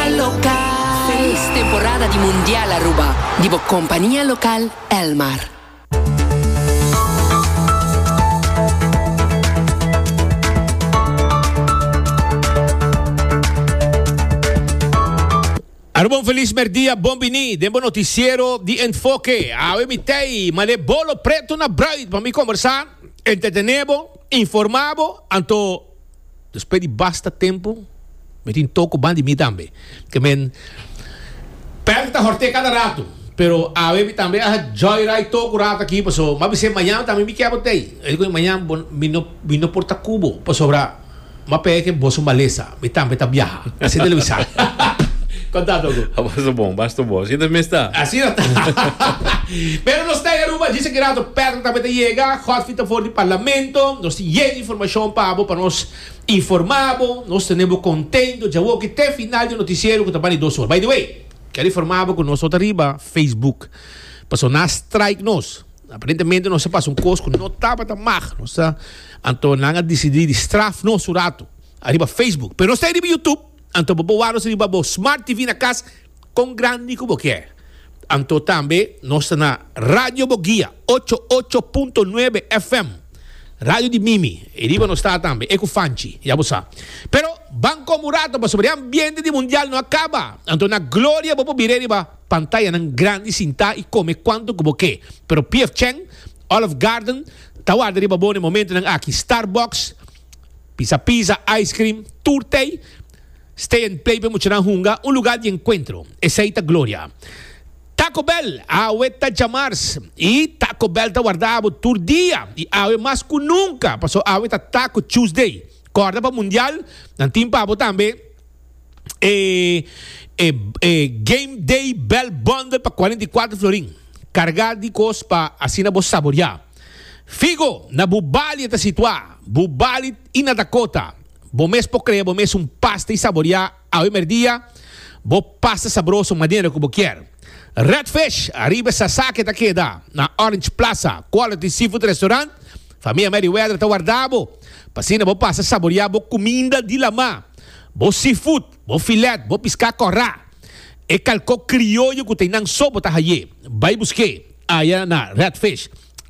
El Local. Felis temporada di Mundial Aruba di bo compania local El Mar. Aruba un felis merdia bon bini den bo noticiero di Enfoke. Awe mi tei male bolo preto na bruid pa mi conversa, entretene bo, informa bo, anto. Despues di basta tempu mi tin tok ku ban di mi tambe. Ke men Pèl ta horté kada ratu, pero awe mi tambe a haci joyride tok un ratu aki, paso mas bisé mañana tambe mi ke bo tei. Esei ku mañana bo mi no mi no por ta ku bo, pasobra m'a pega ke boso malesa, mi tambe ta biaha. Asina el a bisa. Kontantu ku. A basta bon, basta bon. Asina ta mes ta. Asina ta. Pero nos ta e Aruba djis aki ratu. Pèl tambe ta yega, Godfrey ta for di parlamento, nos tin yega. Informacion pa bo pa nos informa bo. Nos tene bo contento djawoki te final di noticiero cu ta ban di dos or. By the way, quiero informa bo cu nos no ta riba Facebook pasobra nan a strike nos. Aparentemente nos a pasa un cos cu no tabata mag. Nos ta anto nan a dicidi di straf nos un rato ariba Facebook. Pero nos ta ariba YouTube. Anto bo bo warus riba bo Smart TV na cas con grandi cu bo kier. Anto tambe nos ta na Radio Bo Guia ocho ocho punto nuebe FM, radio di Mimi, e riba nos ta tambe, e cu Fanchi, ya bo sa. Pero ban con bo rato pasobra e ambiente di Mundial no a caba, anto na gloria bo por bira riba pantayanan grandi sinta y come cuanto cu bo ke. Pero P.F. Chang, Olive Garden, ta warda riba bo na e momentonan aki. Starbucks. Pisa pisa, ice cream, tur tei. Stay and play p'e muchanan hunga un lugar di encuentro. Esei ta gloria. Taco Bell, awe ta djamars y Taco Bell ta warda abo tur dia y awe mas cu nunca paso awe ta Taco Tuesday. Corda pa mundial nan tin pa abo tambe e e e Game Day Bell Bundle pa cuarenta y cuatro florin carga di cos pa asina bo saboria. Figo, na bu bali e ta situá, bu bali i na Dakota. Bo mes por krea bo mes un pasta i saboriá awe merdia bo pasta sabroso manera ku bo kier. Redfish, ariba Sasaki ta keda, na Orange Plaza, Quality Seafood Restaurant. Famia Merriweather ta warda bo, pa asina bo pasa saboriá bo kuminda di lamá, bo seafood, bo filèt, bo piská kòrá, e kalkó krioyo ku ta einan so bo ta haié. Bai busk'é! Aya na Redfish.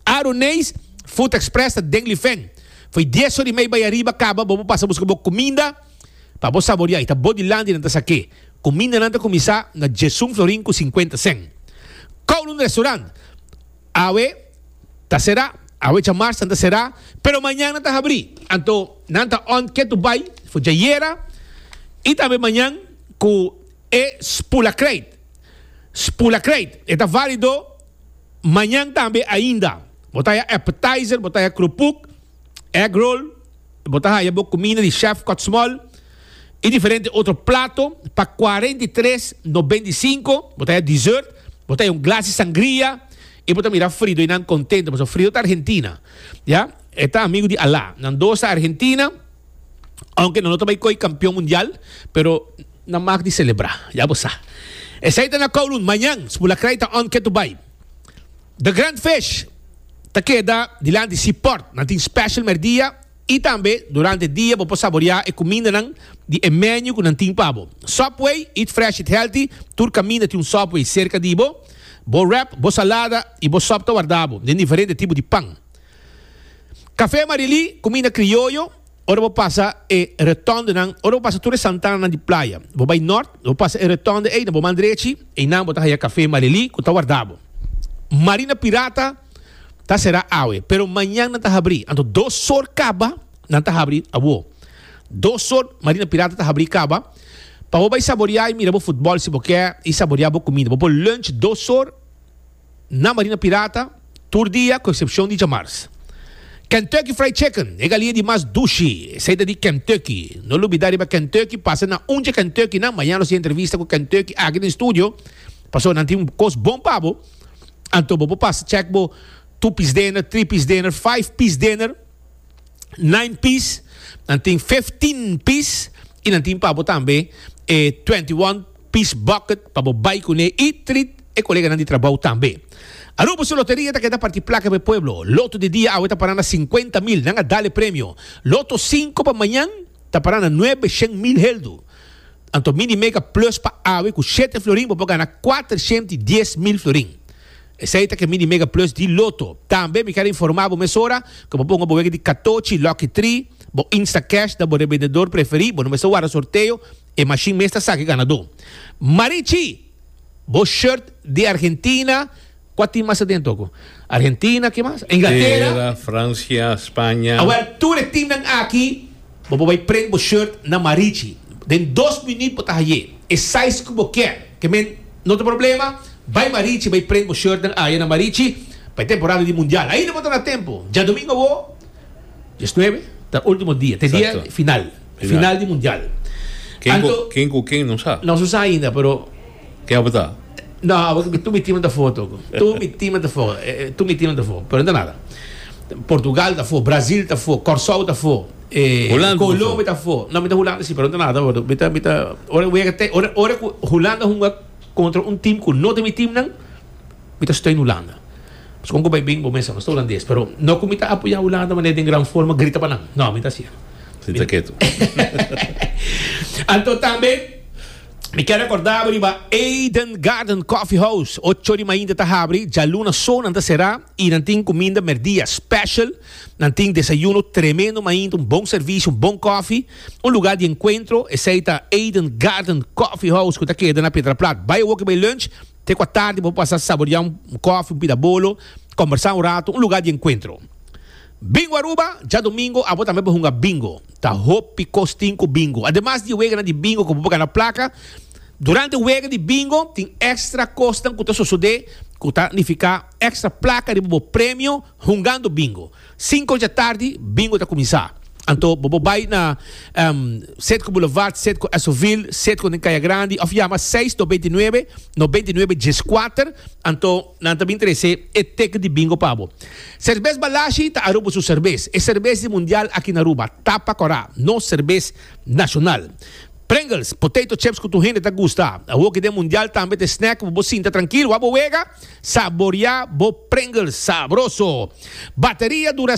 Aru Neys Food Express ta den Lifen. Fo'i dies or i mei bai ariba kaba bo por pasa buska bo kuminda pa bo saboria. I ta bo di landi nan ta sa ke. Kumindanan ta kuminsá na diesun florin ku sinkuenta sèn. Kowloon Restaurant awe ta será. Awe djamars nan ta será pero mañan nan ta habrí. Anto nan ta on ke tur bai for djayera i tambe mañan ku E spoelaccrate, Spoelaccrate, e ta válido mañan tambe ainda. Bo ta haya appetizer, bo ta haya krupuk, egg roll, bo ta haya bo kuminda di chef Kòtsmòl i diferente otro plato pa kuarenta i tres no benta i sinku. Bo ta haya dessert, bo ta haya un glas di sangria i bo ta mira Frido i nan kontento pasobra Frido ta Argentina, ya. E ta amigu di Alá. Nan dos ta Argentina. Aunke nan no ta bai koy kampion mundial, pero nan mak di selebrá, ya bo sa. Esei ta na Kowloon mañan, Spulakrai ta on ketu bai. The Grand Fish ta keda dilanti Seaport, nan tin special merdia i tambe durante dia bo por saboreá e kumindanan di e menu ku nan tin pa bo. Subway, eat fresh, eat healthy, tur kaminda tin un Subway serka di bo. Bo wrap, bo salada i bo sop ta wardá bo den diferente tipo di pan. Café Marilí, Cuminda Crioyo, Ora bo pasa e retondenan, ora bo pasa tur e santananan di playa, bo bay nort, bo pasa e retonde ey na bo man drechi, eynan bo ta haya Café Marilí cu ta warda bo. Marina Pirata ta cera awe, pero mañan nan ta habri, anto dos sor caba nan ta habri awó. Dos sor Marina Pirata ta habri caba pa bo bay saboria y mira bo futbol si bo kier y saboria bo cuminda. Bo por lunch dos sor. na Marina Pirata tur dia ku eksepshon di djamars. Kentucky Fried Chicken, e galinha di mas dushi, esei ta di Kentucky. No lubidá riba Kentucky pasa na un dje Kentucky nan, mañana nos tin entrevista ku Kentucky aki den studio, paso nan tin kos bon pa bo. Anto bo por pasa chèk bo two piece dinner, three piece dinner, five piece dinner, nine piece, nan tin fifteen piece i nan tin pa bo tambe e twenty one. pis bucket pa bo bai kuné i trit e koleganan di trabou tambe. Aruba su loteria ta keda parti plaka pa e pueblo. Loto di dia awe ta para na sinkuenta mil, nan a dal e premio. Loto sinku pa mañan ta para na nuebe shen mil heldu. Anto mini mega plus pa awe ku shete florin bo por gana kuatershent i dies mil florin. Esei ta ke mini mega plus di loto. Tambe mi kier a informa bo mesora ku bo ponga bo wega di katochi, lucky three, bo instacash na bo rebendedor preferí. Bo no mester warda sorteo. E machine mes ta sa ki ganadó. Marichi! Bo shirt di Argentina, kua tin mas adentu aku? Argentina, ke mas? Inglatera. Inglatera, Francia, Spania. A wel, tur e timnan aki bo por bai prent bo shirt na Marichi. Den dos minüt bo ta hayé e size ku bo kier. Ke men, no ta problema, bai Marichi bai prent bo shirtnan aya na Marichi pa e temporada di mundial. Ainda bo ta na tempu. Djadomingo awó. Dies nuebe ta ultimo dia, ta e dia final, final di mundial. Ken ku ken no sa. No su sa ainda pero. Ken abo ta? No abo tur mi team ta for toko. Tur mi team ta for, tur mi team ta for pero no ta nada. Portugal ta for, Brazil ta for, Corsou ta for, Colombia ta for. No mi ta Hulanda si pero no ta nada wordo. Mi ta mi ta ora ku Hulanda hunga kontra un team ku no ta mi team nan. Mi ta steun Hulanda. Pasobra un ku bai bin bo mester sa nos ta hulandes, pero no ku mi ta apoyá Hulanda manera den gran forma grita pa nan. No, mi ta hasié. Sita ketu. Anto tambe mi ker rekordá bo riba Eden Garden Coffee House. Ocho di mainta ta habri, djaluna so nan ta será i nan tin kuminda merdia special. Nan tin desayuno tremendo mainta, un bon servisio, un bon kofi, un lugá di enkuentro. Esei ta Eden Garden Coffee House ku ta keda na Piedraplat. Bai awor ku bai lunch. Te kua tardi bo pasa saboriá un kòfi, un pida bolo, kòmbersá un ratu, un lugá di enkuentro. Bingo Aruba, Djadomingo abo tambe por hunga bingo. Ta hopi kos tin ku bingo. Ademas di e weganan di bingo ku bo por gana plaka, durante wega di bingo tin èkstra kosnan ku ta sosodé ku ta nifiká èkstra plaka riba bo premio, Hungando bingo. Sinku dja tardi bingo ta kuminsá. Anto bo por bai na Setco Boulevard, Setco Esovil, Setco den Kaya Grandi òf yama seis no binti nuebe no binti nuebe djes kuater anto nan ta bin trese e teken di bingo pa bo. Serbes Balashi ta Aruba su serbes. E serbes di mundial aki na Aruba. Tapa kòrá. Nos serbes nashonal. Pringles, potato chips ku tur hende ta gusta. Awoki den mundial tambe ta e snack ku bo por sinta trankil wak bo wega. Saboria bo Pringles sabroso! Bateria dura